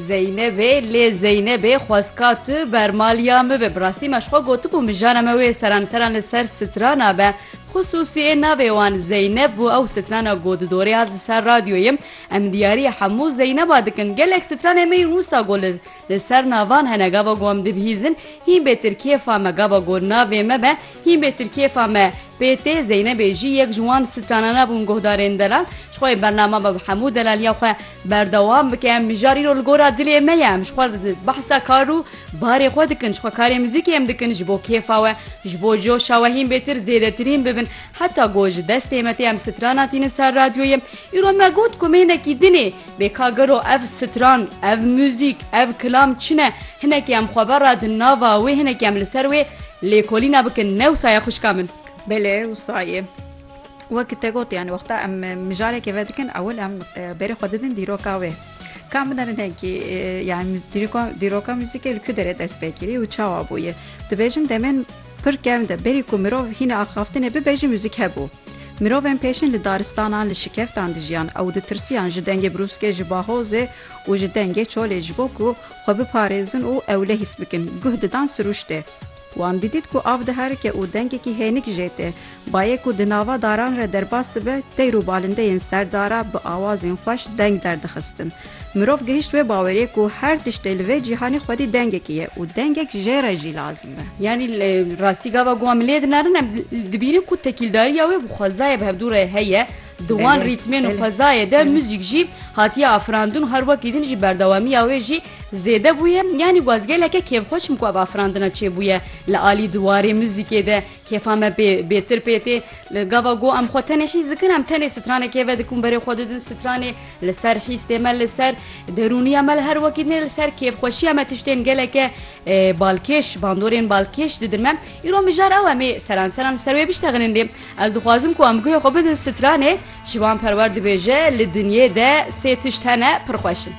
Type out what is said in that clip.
Zeynebê lê Zeynebê xwezka tu bermaliya min bi. Bi rastî me ji xwe gotibû mijara me wê seran seran li ser sitrana be. Xisûsî ê navê wan Zeyneb bû ew sitrana ku di dorê hat li ser radyoyê em diyarî hemû Zeyneba dikin. Gelek sitranên me yên wisa ku li Li ser navan hene gava ku em dibihîzin hîn bê tir kêfa me gava ku navê me be hîn bê tir kêfa me PT Zeynebê jî yek ji wan stranan bûn guhdarên delal ji xwe bernama be bi hemû delaliya xwe berdewam bike em mijar îro li gora dilê me ye em ji xwe behsa kar û barê xwe dikin ji xwe karê muzîkê em dikin ji bo kêfa we ji bo coşa we hîn bê tir zêdetirîn bibin heta ku ji destê me tê em strana tînin ser radyoyê îro me got ku mênekî dinê Bê ka gelo ev stran, ev muzîk, ev kilam çi ne, hinekî em xwe vera di nava wê, hinekî em li ser wê lêkolîna bikin, ne wisa ye xwişka min? Belê wisa ye. Wek te got yanî wexta em mijarekê vedikin ewil em berê xwe didin dîroka wê. Ka min derin hinkî yanî dîroka muzîkê li ku derê dest pê kirî û çawa bûye? Dibêjin demên Pir kevn de berî ku mirov hîna axaftinê bibe jî muzîk hebû. Mirovên pêşin li daristanan, li şikeftan dijiyan ew ditirsiyan ji dengê brûskê, ji bahozê û ji dengê çolê ji bo ku xwe biparêzin û ewle hîs bikin, guh didan sirûştê. Wan didît ku av diherike û dengekî hênik jê tê, Bayê ku di nava daran re derbas dibe, teyr û balindeyên ser dara bi awazên xweş deng derdixistin. Mirov gihişt wê bawerê ku her tiştê li vê cîhanê xwedî dengekî ye û dengek jê re jî lazim e. Yanî li rastî gava ku wan milê dinarin em dibînin ku tekîldariya wê bi xwezayê bi hevdû re heye. Di wan rîtmên û xwezayê de muzîk jî hatiye afirandin û her wekî din jî berdewamiya wê jî zêde bûye. Yanî gwaz geleke kêfxweş im ku ev afirandina çêbûye li alî di warê muzîkê de. Kêfa me bê bêtir pê tê. Li gava ku em xwe tenê hîs dikin, em tenê stranê kêve dikun berê xwe didin. Stranê li ser hîs tê me li ser derûniya me li her wekî nê li ser kêfxweşiya me tiştên geleke balkêş, bandorên balkêş didin me. Îro mijar ew em ê seranseran li ser wê biştexinin lê ez dixwazim ku em guhê xwe bidin stranê. Şivan Perwer dibêje, Li dinyê de sê tişt hene pir xweş in.